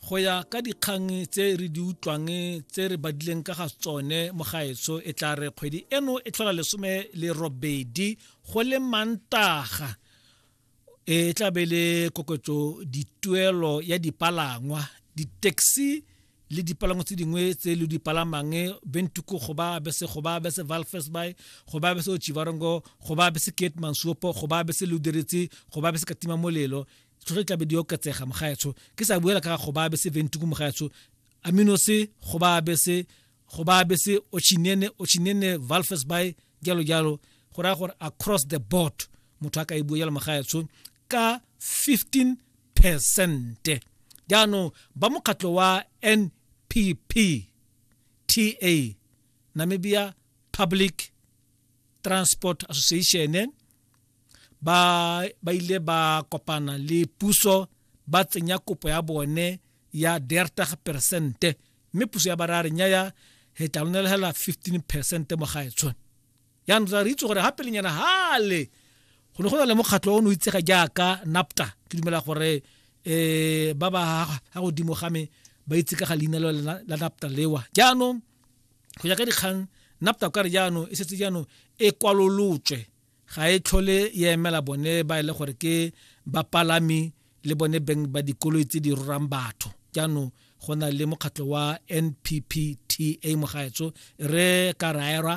go ya ka dikgang tse re di utlwang tse re badileng ka ga tsone mogaetso e tla re kgwedi eno e tlhola lesome le robedi go le mantaga e tla be le koketso dituelo ya dipalangwa di-taxi le dipalangwa tse dingwe tse le di palamang bentuku go ba bese go ba bese valfes by go ba bese ochivarongo go ba bese kate mansuopo go ba bese luderitsi go ba bese katima molelo tsho re tlabe di oketsega mogaetsho ke sa buela ka go ba be se ventiku mogaetsho amino se go ba be se go ba be se ochinene ochinene valfes by jalo jalo go raya gore across the board motho a ka e bua jalo mogaetsho ka 15 percent jaanong ba mokgatlho wa npp ta namibia public transport association ba ba ile ba kopana le puso ba tsenya kopo ya bone ya dertag percente mme puso ya bara re nyaya he tla lona hela 15 percent mo ga etshone yang ra re itse gore ha pele nyana hale go ne go na le mokgatlho o ne o itsega jaaka napta ke dumela gore eh ba ba ha godimo ga me ba itse ka ga leina la napta lewa jaanong go ya ka dikgang napta kare jaanong e setse jaanong e kwalolotswe ga e tlhole e emela bone ba e le gore ke bapalami le bone beng ba dikoloi tse di rorang batho jaanong go na le mokgatlho wa nppta mogaetso re ka raerwa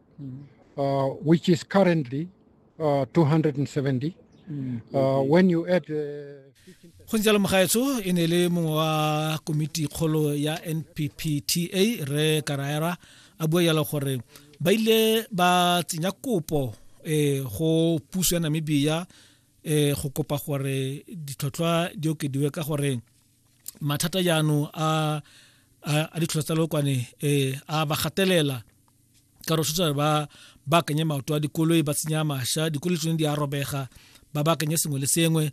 uh, which is currently uh, 270. Uh, when you add uh, go ntse le mogaetsho e ne le mongwe wa komiti kgolo ya nppta re karaera a bua jalo gore ba ile ba tsenya kopo um go puso ya namibia um go kopa gore ditlhotlhwa di okediwe ka gore mathata jaanong a ditlhotlhwa tsa lokwane um a ba gatelela ka rotshotsa ba baakanye maoto a dikoloi ba tsenya masha dikoloi tsone di a robega ba baakanye sengwe le sengwe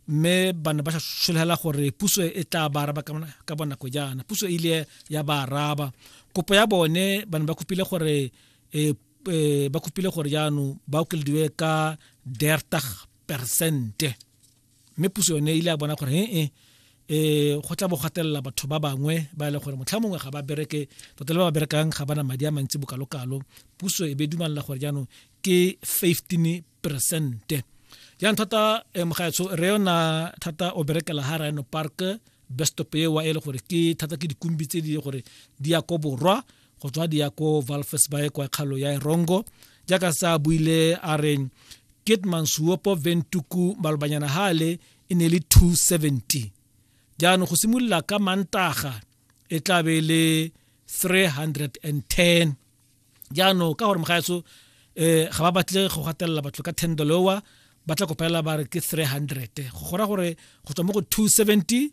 mme ba ne ba sologela gore puso e tla ba araba ka bonako jaana puso e ile ya ba araba kopo ya bone ba ne ba kopile gore e, e, ba kopile gore jaanong ba okelediwe ka dertag percente mme puso yone ile a bona gore ee eh go tla bo gatelela batho ba bangwe ba e leng gore motlha mongwe ga ba bereke tota le ba ba berekang ga bana madi a mantsi bokalokalo puso e be dumalela gore jaanong ke 15 percente jaanong thata eh, mogaetsho re yona thata o berekela ha rhino park bestop ewa e le gore ke thata ke dikumbi tse di gore di ya ko borwa go tswa dia ko valfes bae kwa kgalo ya erongo jaaka sa buile a reng kitman suopo ventuku malobanyana hale e ne le 270 jaanong go simolola ka mantaga e tla be e le 310 jaanong ka gore mogaetso um eh, ga ba batle go gatelela batho ka ten dollowa ba tla kopelela ba re ke 300 go gora gore go tswa mo go 270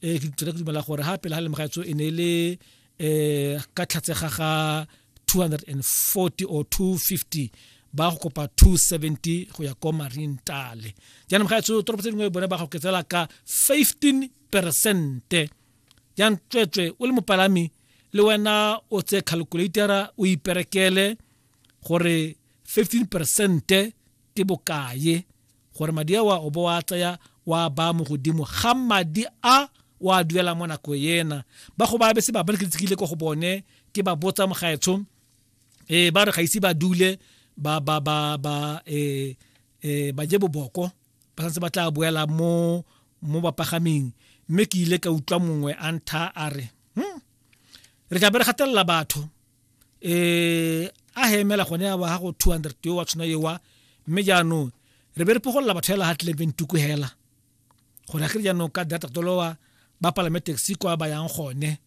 e ke tsere ke dumela gore ha pele ha le mogatso e ne le eh ka tlhatsega ga 240 or 250 ba go kopa 270 go ya ko marine tale jaanong ga etso toropo tse dingwe bone ba go ketsela ka 15 percente jang tswetswe o le mopalami le wena o tse calculatera o iperekele gore 15 percente ke bokaye gore madi a wa o bo wa tsaya wa ba mo godimo ga madi a wa duela mo nako ena ba go ba be se ba ba ke tsikile go bone ke ba botsa mogaetsho eh ba re ga ise ba dule ba ba ba ba eh eh ba je boboko ba santse ba tla boela mo mo bapagaming mme ke ile ka utlwa mongwe a ntha a re hmm, re tla be re gatelela batho eh a he emela gone ya ba ha go 200 yo wa tshwana yewa mme jaanong re be re pogolela batho hela ha tlebe ntuku hela gore ge jaanong ka data tolowa ba palame taxi kwa ba yang gone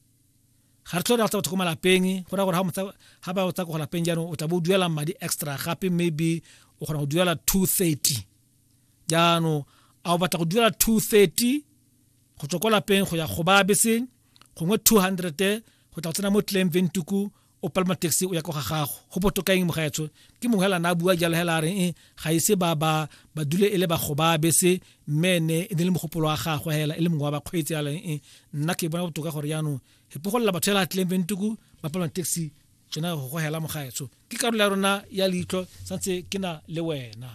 ga re tlhole re batho ko malapeng go ra gore ha ba tsa ko lapeng jaanong o tla bo duela madi extra gape maybe o kgona go duela 230 jaanong a o batla go duela 230 go tswa ko lapeng go ya go ba beseng gongwe 200 go tla go tsena mo tleng ventuku o palama taxi o ya kwa ga gago go botokaeng mogaetsho ke mongwe hela na a bua jalo hela a reng eh, ga ise ba ba ba dule e le bagoba bese mme ne e ne le mogopolo wa gagwe hela e le mongwe wa bakgweetsi a reng eh, nna ke bona botoka gore jaanong e pogolela batho hela tleng ventuku ba palama taxi tsona go go hela mogaetsho ke karolo ya rona ya leitlho santse ke na le wena